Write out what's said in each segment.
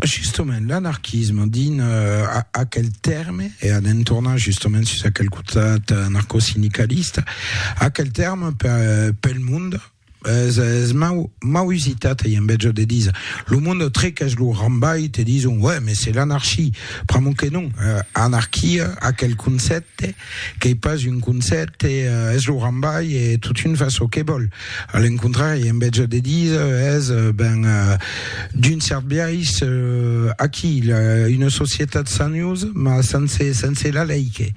Justement, l'anarquisme din aquel tèrme, e anem tornar justement sus aquel cotat anarcosindicalista, aquel tèrme pel mond es, es mau, mau usitat ei en Bèlgia de díser lo mond trequèch lo rambalh te dison, uèi, mès se l'anarchie, pr'amor que non, anarquia, aquel concèpte, Qu'ei pas un concèpte, es lo rambai e totun fa çò que vòl. A l'encontrari, en vètge de díser, es, ben, d'un cèrt biais, aquí, una societat sanhosa, mas sense, sense la lei que.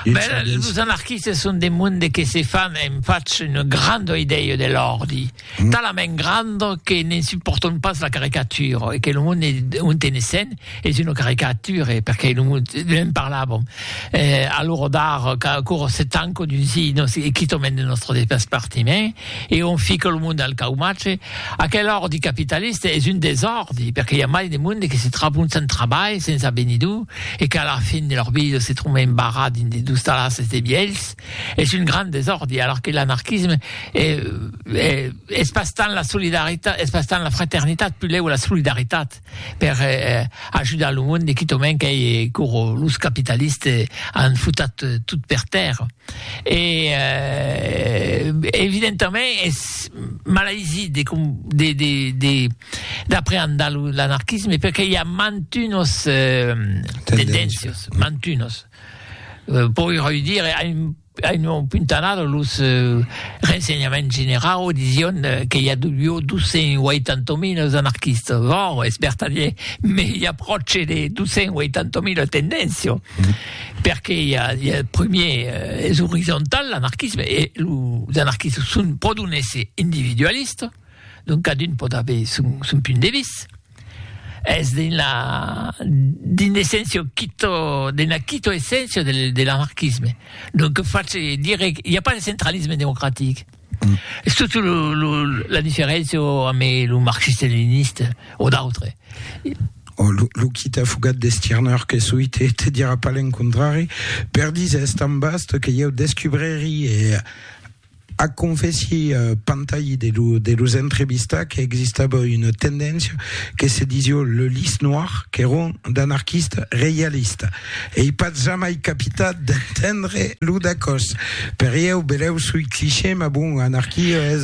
Bèla, los anarquistes son de monde que se fan, e'm fach una granda idèia de l'òrdi. talament grand que ne'n supportons pas la caricature e que lo monde on tenessen es una caricature perque lo monde ne'n parlàvem e alora d'ara qu'aquò se tanca dins si nos quitament de nostre despartiment e on fica lo monde al caumatge aquel ordi capitaliste es un desòrdi perque i a mai de monde que se tròbon sens trabalh sens avenidor e qu'a la fin de lor vida se tròben barrats dins de dostalasses de vielhs es un grand desòrdi, alors que l'anarquisme es pas tant la solidaritat, es pas tant la fraternitat, pulèu la solidaritat per ajudar lo monde, quitament qu'ei coro los capitalistes an futat tot per tèrra. E evidentament es malaisit de de de de d'apreandar l'anarquisme perque i a mantunos tendéncias, mantunos. Poiròi dire a un a un puntanada los rensenhaments generau dision que i a deu 280.000 anarquistas, bon, es vertadier, me i a pròche de 280.000 tendencio, perque i a i a primier es orizontal l'anarquisme e los anarquistas son pro d'un èsser individualista, donc cadun pòt aver son son punt de vista. Es d'una d'un essèncio quito d'una quito essèncio de de l'anarquisme. Donc face dire i a pas de centralisme democratic. Es totu lo lo la diferencio ame lo marxiste leniniste o d'autre. O lo lo quita fugat de Stirner que soi te te dira pas l'encontrari per diser es tan vast que ieu descubreri e Ac confèssi Pantayi de lo de los entrevistats que existava una tendéncia que se disió le Lys Noir qu'èron d'anarquistes reialistes. Ei pas jamai capitat d'entendre lo dacòs. Per ieu, belèu soi cliché, mas bon, anarquia es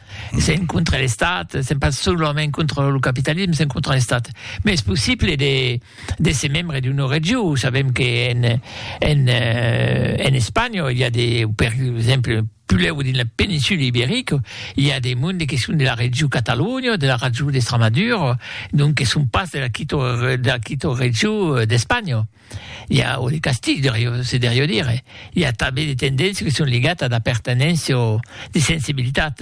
S'en contra l'Estat, s'en pas solament contra lo capitalisme, s'en contra l'Estat. Mais es possible de, de se membre d'una regió. Sabem que en, en, euh, en Espanya, il y a des, per exemple, Puleu dins la péninsule ibérique, il y a des mondes qui sont de la région Catalogne, de la région d'Extremadure, donc qui sont pas de la quito, de la quito région euh, d'Espagne. I a o de castig de riu, se derió dire. I a tanben de tendéncia que son ligat ad apertenéncia o de sensibilitat,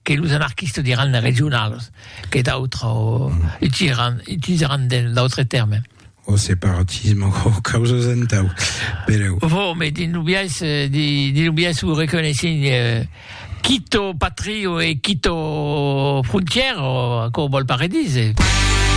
que los anarquistas diràn regionalas, que d'autres utilisaràn, utilisaràn de d'autres tèrmes. O separatisme o o causas entau, pereu. Vò, me dins lo biais, di, dins lo biais o reconeissin quito patrio e quito frontièra, o aquò vòl pas redire.